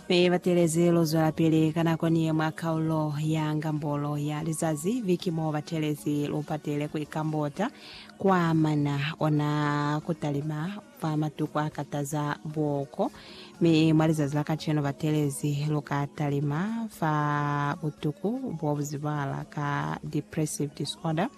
Mi batelezi lu zwelapili ka nako ni ye mwa kaulo ya ngambolo ya lizazi, viki mo batelezi lu patile ku ikambota kwa mana ona ku talima fa matuku a kataza buoko. Mi mwa lizazi la kacenu batelezi lu ka talima fa butuku bo bu zibala ka depressive disorder,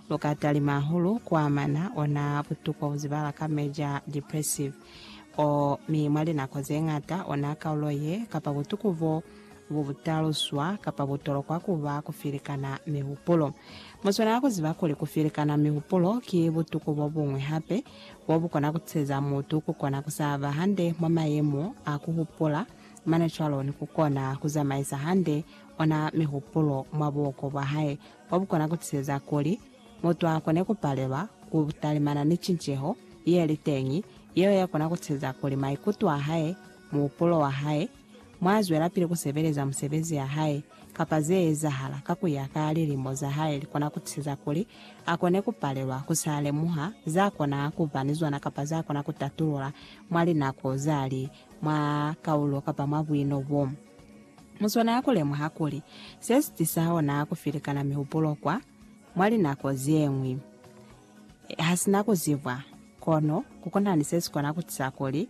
lu ka talima hahulu kwa mana ona butuku bo bu zibala ka major depressive. o, mi mwa linako zeñata ona kaulo ye, kapa butuku bo, bu butaluswa, kapa bu tolokwa kuba kufilikana mihupulo. Mu swanela kuziba kuli kufilikana mihupulo ki butuku bobuñwi hape, bo bu kona kuteza mutu ku kona ku sa ba hande mwa mayemo a ku hupula, mane cwalo ni ku kona ku zamaisa hande ona mihupulo mwa buoko bwa hae. kwa bukona kutiseza kuli mutu akone kupalelwa ku talimana ni cinceho yeli teñi yeo yakona kutiseza kuli maikuto ahae, muhupulo wahae, mwazwelapili kusebeleza musebezi yahae, kapa zeezahala ka kuya ka lilimo zahae likona kutiseza kuli akone kupalelwa kusa lemuha zakona kuba ni zona kapa zakona kutatulula mwa linako zali mwa kaulo kapa mwa buino bo. Mu swanela ku lemuha kuli se si tisa hona ku filikana mihupulo kwa mwa linako ze ñwi ha si na ku zibwa. Kono ku kona ni se si kona ku tisa kuli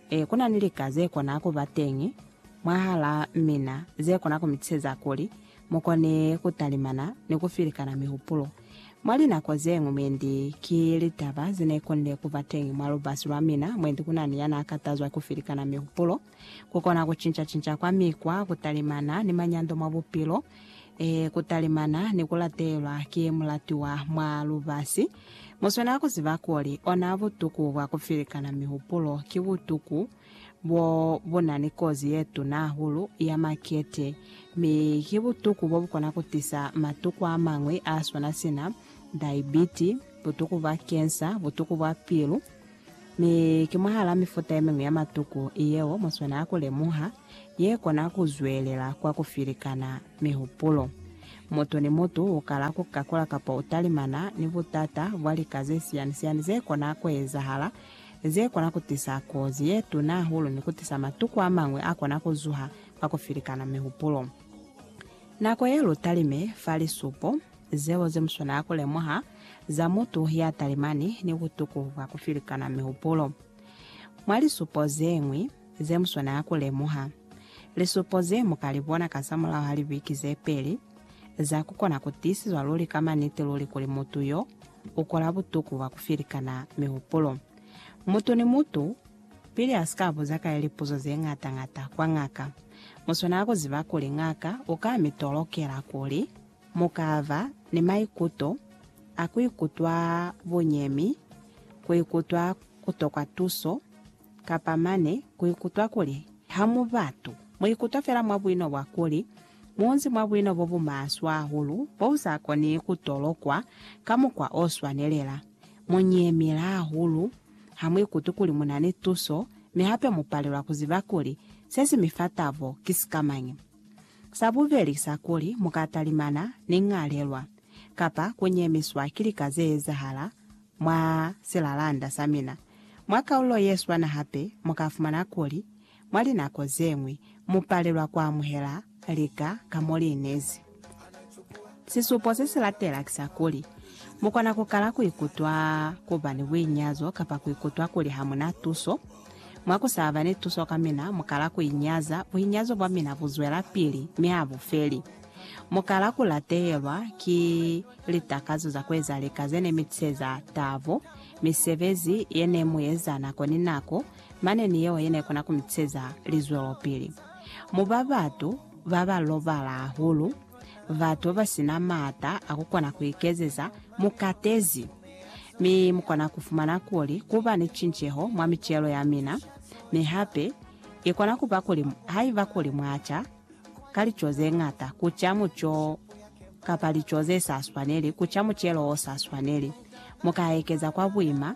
e, ku na ni lika ze kona ku ba teñi mwahalaa mina ze kona ku mi tiseza kuli mu kone ku talimana ni ku filikana mihupulo. Mwa linako ze ñwi mwendi ki litaba ze ne konile ku ba teñi mwa lubasi lwa mina mwendi ku na ni ya n'a katazwa ku filikana mihupulo. Ku kona ku cinca-cinca kwa mikwa ku talimana ni manyando mwa bupilo, ee, ku talimana ni ku latelwa ki mulatiwa mwa lubasi. Mu swanela ku ziba kuli ona butuku bwa ku filikana mihupulo ki butuku bo bu na ni kozi ye tuna hahulu ya makete, mi ki butuku bo bu kona ku tisa matuku a mañwi a swana sina daibiti, butuku bwa kensa, butuku bwa pilu, Mi ki mwahal'a mifuta ye miñwi ya matuku yeo mu swanela ku lemuha ye kona ku zwelela kwa ku filikana mihupulo. Mutu ni mutu u kala ku kakula kapa u talimana ni butata bwa lika ze siani-siani ze kona ku ezahala, ze kona ku tisa kozi ye tuna hahulu ni ku tisa matuku a mañwi a kona ku zuha kwa ku filikana mihupulo. Nako ye lu talime fa lisupo. zeo ze muswanela ku lemuha za mutu ya talimani ni butuku bwa ku filikana mihupulo. Mwa lisupo ze ñwi ze muswanela ku lemuha, lisupo ze mu ka li bona kazamulaho ha libiki ze peli za ku kona ku tiisizwa luli ka maniti luli kuli mutu yo u kola butuku bwa ku filikana mihupulo. Mutu ni mutu, pili a si ka buza ka ye lipuzo ze ñata-ñata kwa ngaka, mu swanela ku ziba kuli ngaka u ka mi tolokela kuli Mu ka ba ni maikuto a ku ikutwa bunyemi, ku ikutwa ku tokwa tuso, kapa mane ku ikutwa kuli ha mu batu. Mu ikutwa fela mwa buino bwa kuli mu nzi mwa buino bo bu maswe hahulu bo bu sa koni ku tolokwa ka mukwa o swanelela. Mu nyemile hahulu, ha mu ikutwi kuli mu na ni tuso, mi hape mu palelwa ku ziba kuli se si mi fa tabo ki sikamañi. Sa bubeli sa kuli mu ka talimana ni ñalelwa kapa ku nyemiswa ki lika ze ezahala mwa silalanda sa mina. Mwa kaulo ye swana hape, mu ka fumana kuli mwa linako ze ñwi mu palelwa ku amuhela lika ka mo li inezi. Sisupo se si latela ki sa kuli, mu kona ku kala ku ikutwa ku ba ni buinyazo kapa ku ikutwa kuli ha mu na tuso. Mwa ku sa ba ni tuso ka mina, mu kala ku inyaza, buinyazo bwa mina bu zwelapili, mi ha bu feli. Mu kala ku latehelwa ki litakazo za ku eza lika ze ne mi tiseza tabo, misebezi ye ne mu eza nako ni nako, mane ni yeo ye ne kona ku mi tiseza lizwelopili. Mu ba batu ba ba lobala hahulu. batu basina maata a kukona kuikezeza mukatezi, mi mukona kufumana kuli kuba ni cinceho mwa micelo yamina, mi hape ikona kuba kuli haiba kuli mwaca ka lico zeñata kuca muco kapa lico zesaswaneli kuca mucelo osaswaneli, mukaekeza kwa buima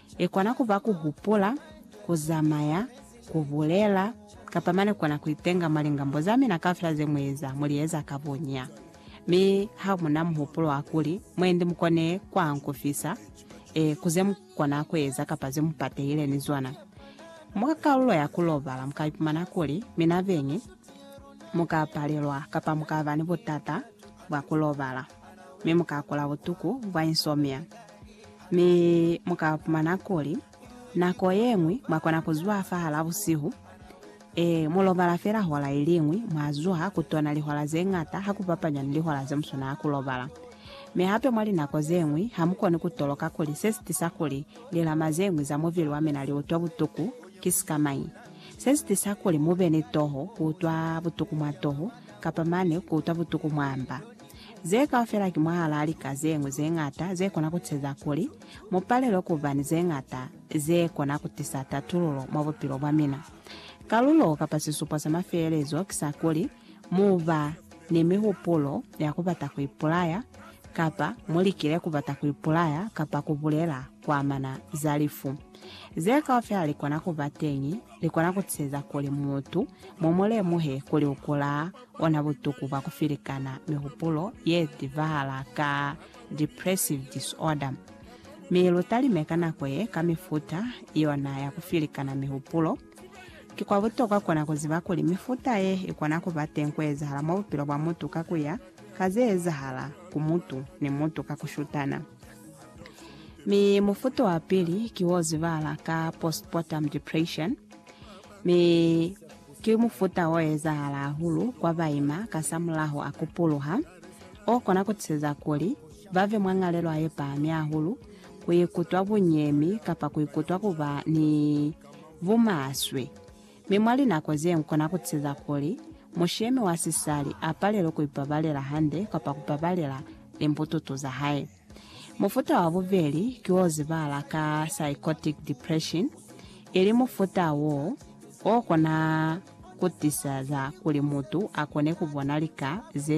I kona ku ba ku hupula, ku zamaya, ku bulela, kapa mane ku kona ku ipenga mwa lingambo za mina kaufela ze mu eza, mu li eza ka boña. Mi ha mu na muhupulo wa kuli mwendi mu kone ku ankufisa, ee, ku ze mu kona ku eza kapa ze mu patehile ni zona mwa kalulo ya ku lobala, mu ka ipumana kuli mina beñi mu ka palelwa kapa mu ka ba ni butata bwa ku lobala, mi mu ka kula butuku bwa insomnia. Mi mu ka pumana kuli, nako ye ñwi mwa kona ku zwa fahal'a busihu, ee, mu lobala fela hora i li ñwi, mwa zwa ku tona lihora ze ñata ha ku bapanywa ni lihora ze mu swanela ku lobala. Mi hape mwa linako ze ñwi, ha mu koni ku toloka kuli se si tisa kuli lilama ze ñwi za mubili wa mina li utwa butuku ki sikamañi. Se si tisa kuli mu be ni toho, ku utwa butuku mwa toho, kapa mane ku utwa butuku mwa mba. Ze kaufela ki mwahalaa lika ze ñwi ze ñata ze kona ku teza kuli mu palelwe ku ba ni ze ñata ze kona ku tisa tatululo mwa bupilo bwa mina. Kalulo kapa sisupo sa mafelelezo ki sa kuli mu ba ni mihupulo ya ku bata ku ipulaya, kapa mu likile ku bata ku ipulaya kapa ku bulela ku amana za lifu. Ze kaufela li kona ku ba teñi, li kona ku teza kuli mutu mu mu lemuhe kuli u kula ona butuku bwa ku filikana mihupulo ye tibahala ka depressive disorder. Mi lu talime ka nako ye ka mifuta yona ya ku filikana mihupulo. Ki kwa butokwa kona ku ziba kuli mifuta ye i kona ku ba teñi ku ezahala mwa bupilo bwa mutu ka ku ya ka ze ezahala ku mutu ni mutu ka ku shutana. Mi mufuto wa pili ki wo zibahala ka postpartum depression. Mi ki mufuta o ezahala hahulu kwa baima kasamulaho a kupuluha, o kona ku tiseza kuli ba ve mwa ñalelwa ye pahami hahulu, ku ikutwa bunyemi kapa ku ikutwa ku ba ni bumaswe. Mi mwa linako ze ñwi kona ku tiseza kuli mushemi wa sisali a palelwe ku ipabalela hande kapa ku pabalela limbututu za hae. Mufuta wa bubeli ki wo zibala ka psychotic depression, ili mufuta wo o kona ku tisa za kuli mutu a kone ku bona lika ze